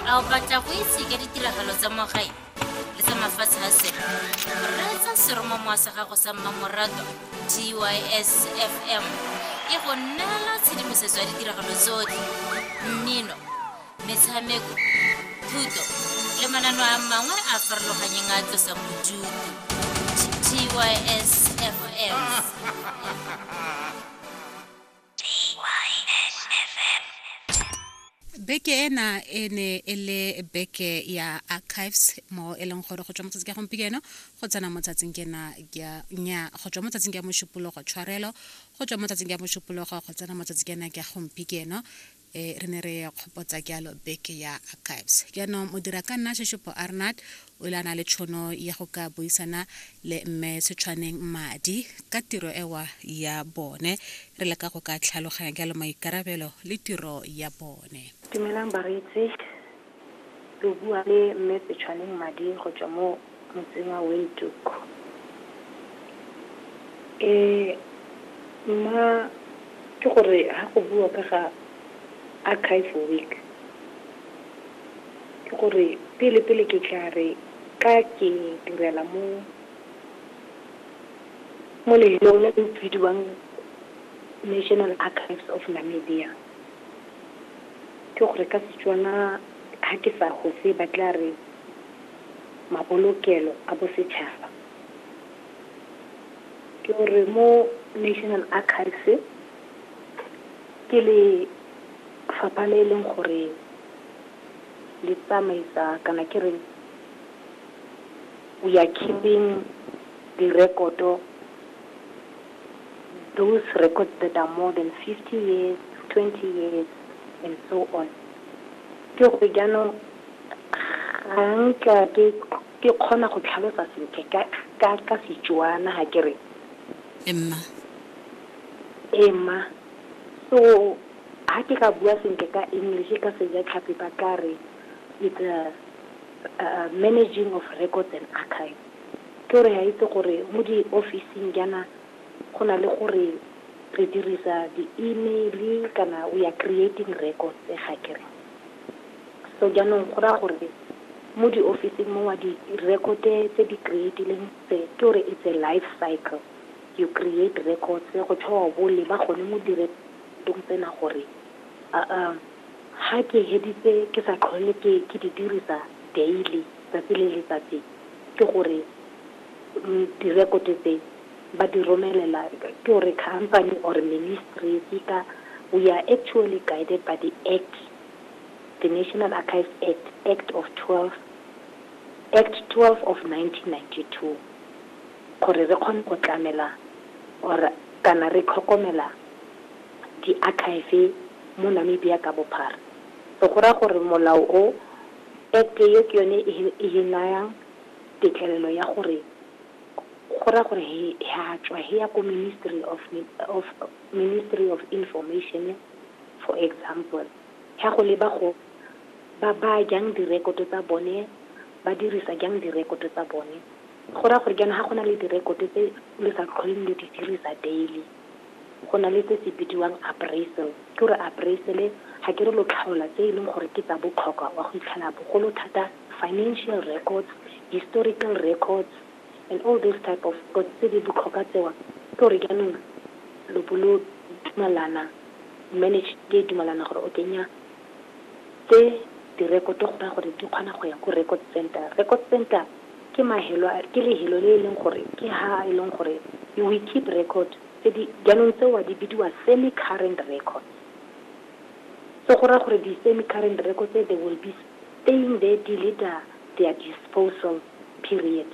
a o batla go itse ka ditiragalo tsa mo gae le tsa mafatshe a sele reetsa seromamowa sa gago sa mmamoratwa gys fm e go neela tshedimosetso ya ditiragalo tsotlhe mmino metshameko thuto le manano a mangwe a farologanyeng a tlosa bodutu gys fm beke ena e ne e le beke ya archives mo e leng gore go tswa motsatsi ka gompieno go tsena motsatsing ke na nya go tswa motsatsing ka mošupologo tshwarelo go tswa motsatsing ka mošupologo go tsena motsatsi ke na ke gompieno e re ne re kgopotsa jalo beke ya archives jaanong modira ka nna sheshopo arnard o ile a na le tšhono ya go ka buisana le mme setshwaneng madi ka tiro ewa ya bone re leka go ka tlhaloganya jalo maikarabelo le tiro ya bone dumelang bareetsi Lo bua le Mme Petšhwaneng Madi go tswa mo motseng wa Windhoek. Mma, ke gore ha go bua ka ga Archive Week, ke gore pele pele ke tla re ka ke direla mo mo lefelong le le bidiwang National Archives of Namibia. Ke gore ka Setswana ha ke sa hose ba tla re mabolokelo a bosetšhaba. Ke gore mo National Archives ke lefapha le e leng gore le tsamaisa kana ke reng we are keeping direkoto those records that are more than 50 years, 20 years, and so on. Ke gore jaanong ga nka ke ke kgona go tlhalosa sentle ka ka ka Setswana ha ke re Emma. ema. So ha ke ka bua sentle ka English ka Sejatlhapi ba ka re it's a, a managing of records and archives. Ke re a itse gore mo di ofising jaana go na le gore re dirisa di email kana we are creating records ga kere. So jaanong go raya gore mo di ofising mo wa di record-e tse di creatileng tse ke gore it's a life cycle you create records go tshwao bo leba gone mo di record-ong tsena gore ga ke heditse ke sa tlhole ke di dirisa daily. Tsatsi le letsatsi ke gore direkoto tse ba di romelela ke gore company or ministry seka we are actually guided by the act the national archives act act of 12 act 12 of 1992 gore re kgone go tlamela or kana re tlhokomela di-archive mo namibia ka bophara so go raya gore molao o Act eo ke yone e he nayang tetlelelo ya gore go raya gore he ha tswa he ya ko Ministry of of Ministry of Information for example ya go leba go ba baya jang direkoto tsa bone ba dirisa jang direkoto tsa bone go raya gore jaanong ga go na le direkoto tse le sa tlholeng le di dirisa daily. go na le se se bidiwang appraisal. Ke gore appraisal-e ga ke re lo tlhaola tse e leng gore ke tsa botlhokwa wa go itlhela bogolo thata financial records, historical records and all these type of records tse di botlhokwa tsewa. Ke gore jaanong lo bo lo dumalana, management e dumalana gore okay nnyaa tse direkoto go raya gore di kgona go ya ko record center. Record center. Ke mahelo a, ke lehelo le e leng gore ke ha e leng gore we keep record tse di, jaanong tseo di bidiwa semi current records. So go raya gore di semi current records tse they will be staying there till it a their disposal period.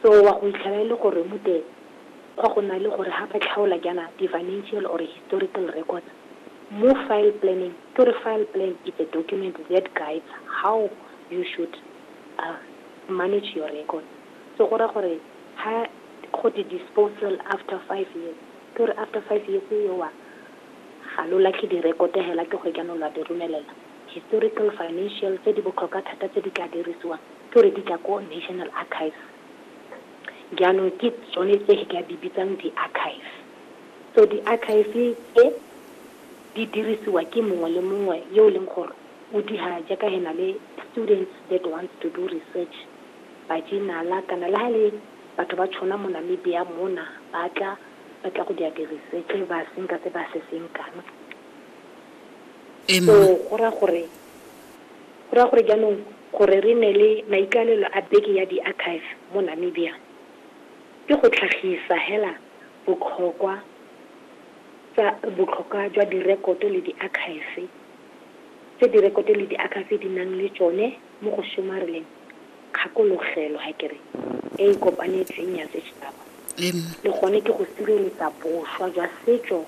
So wa go itlhela e le gore mute gwa go na le gore ha ba tlhaola jaana di financial or historical records mo file planning, ke gore file plan is a document that guides how you should manage your records. So go raya gore ha go di disposal after five years, ke gore after five years eo wa ga lo latlhe direkoto hela ke gore jaanong lwa di romelela historical financial tse di botlhokwa thata tse di ka dirisiwang ke gore di tla ko national archives jaanong ke tsone tse ke ka di bitsang di-archive so di-archive tse di dirisiwa ke mongwe le mongwe yo e leng gore O diha jaaka he na le students that wants to do research ba jinala kana le ha e le batho ba tšhona mo Namibia mona ba tla ba tla go dia di research ba senka se ba se senkang so go ra gore go ra gore jaanong gore re ne le maikalelo a beke ya di archive mo Namibia ke go tlhagisa hela botlhokwa tsa botlhokwa jwa direkoto le di archive tse direkoto le diakhafi di nang le tsone mo go somareleng kgakologelo e e kopanetsweng ya setšhaba, le gone ke go sireletsa boswa jwa setso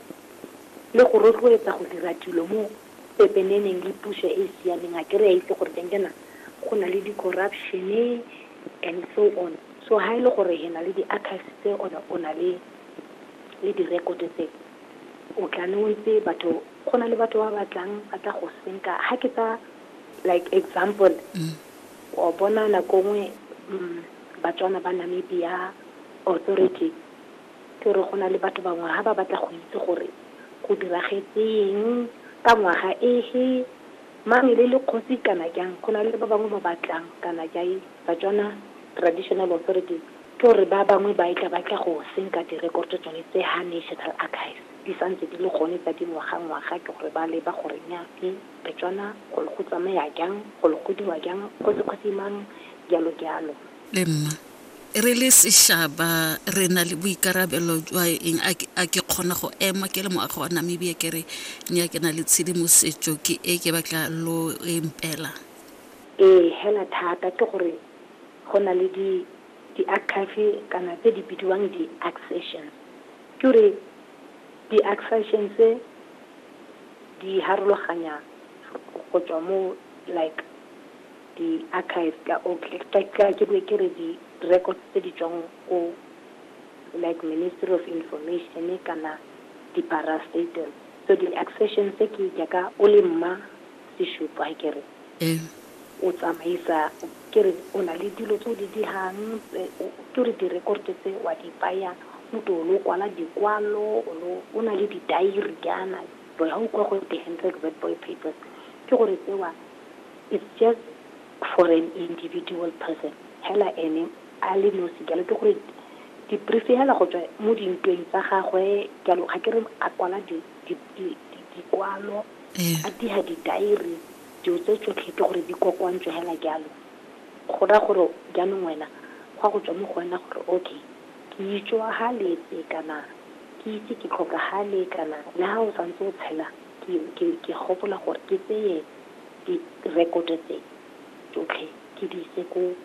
le go rotloetsa go dira dilo mo pepeneneng le puso e e siameng. Akere re a itse gore teng jaana go na le di-corruption-e and so on. So ha e le gore re na le diakhafi tse, or-e o na le direkoto tse, O tla neng o ntse batho go na le batho ba ba tlang ba tla go senka ha ke tsa like example o bona nako nngwe mm, batswana ba namibia authority ke gore go na le batho bangwe ha ba batla go itse gore go diragetseng ka ngwaga ehe mang e le le kgosi kana jang go na le ba bangwe ba batlang kana jai batswana traditional authorities Ke gore ba bangwe ba etla ba tla go senka direkoto tsone tse ha National Archives di sa ntse di le gone tsa dingwagangwaga, ke gore ba leba gore nya e Betswana go le go tsamaya jang, go le go dirwa jang, kgosi-kgosi mang, jalo-jalo. Le nna, re le seshaba re na le boikarabelo jwa eng? A ke kgona go ema ke le moagi wa Namibia ke re nya ke na le tshedimosetso ke e ke batla lo e mpeelang? Ee, hela thata, ke gore Go na le di di-archive kana tse di bidiwang di-accessions. Ke gore di-accessions di harologanya go tswa mo like di-archive ka or ke be ke re di-records tse di tswang ko like Ministry of Information kana di-parastatals. So di-accessions ke jaaka o le mma. e shupo ha ke re o tsamaisa ke re o na le dilo tse o di dirang ke re di-record tse wa di baya o to o lo kwala dikwalo o na le di-diary jaana boy ga o kwa go the handred word boy papers ke gore tsewa it's just for an individual person hela ene a le nosi jalo ke gore di-brief hela go tswa mo dintweng tsa gagwe jalo ga ke re a kwala di di, di, di, dikwalo Ee. a diga didairi dilo tse tsotlhe ke gore di kokoantswe hela jalo go raya gore jaanong wena go a go tswa mo go wena gore okay ke itswagaletse kana ke itse ke tlhokagale kana le ga o santse o tshela ke ke ke gopola gore ke tseye direkoto tse tsotlhe ke di ise ko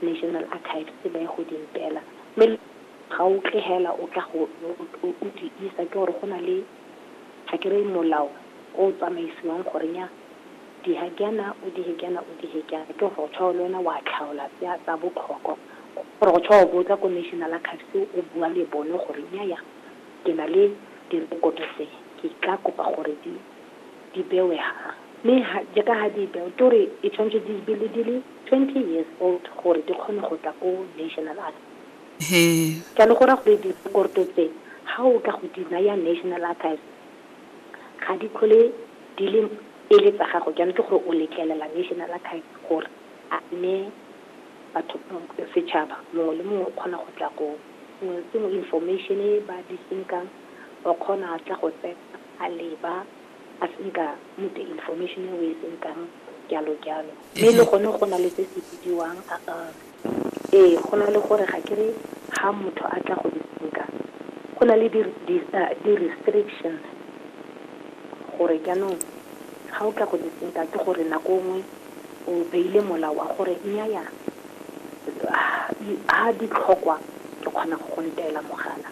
national archives ba ye go di mpela mme Ga o tle hela o tla go o di isa ke gore go na le ga ke re molao o o tsamaisiwang gore nya di ha ke yana o di he ke yana o di he ke yana ke gore tshwa le wena wa tlhaola tse a tsa botlhokwa gore go tshwa o bo tla ko national archives o bua le bone gore nya ya ke na le direkoto tse ke tla kopa gore di di bewe ha mme jaaka ha di bewe ke gore e tshwanetse di be le di le twenty years old gore di kgone go tla ko national archives He. Jalo go raya gore direkorto tse, ga o ka go di naya National Archives, ga di tlhole di le e le tsa gago. Jaanong ke gore o letlelela National Archives gore a ne batho, setšhaba mongwe le mongwe o kgona go tla go sengwe le sengwe, information e ba di senkang, o kgona a tla go tsena a leba, a senka motse information e o e senkang, jalo jalo. Mme le gone go na le se se bidiwang. Ee, go na le gore ga ke re ha motho a tla go nka go na le di restrictions gore jaanong ga o tla go nka ke gore nako nngwe o beile molao wa gore nnyaya ha ditlhokwa ke kgona go go ntela mogala.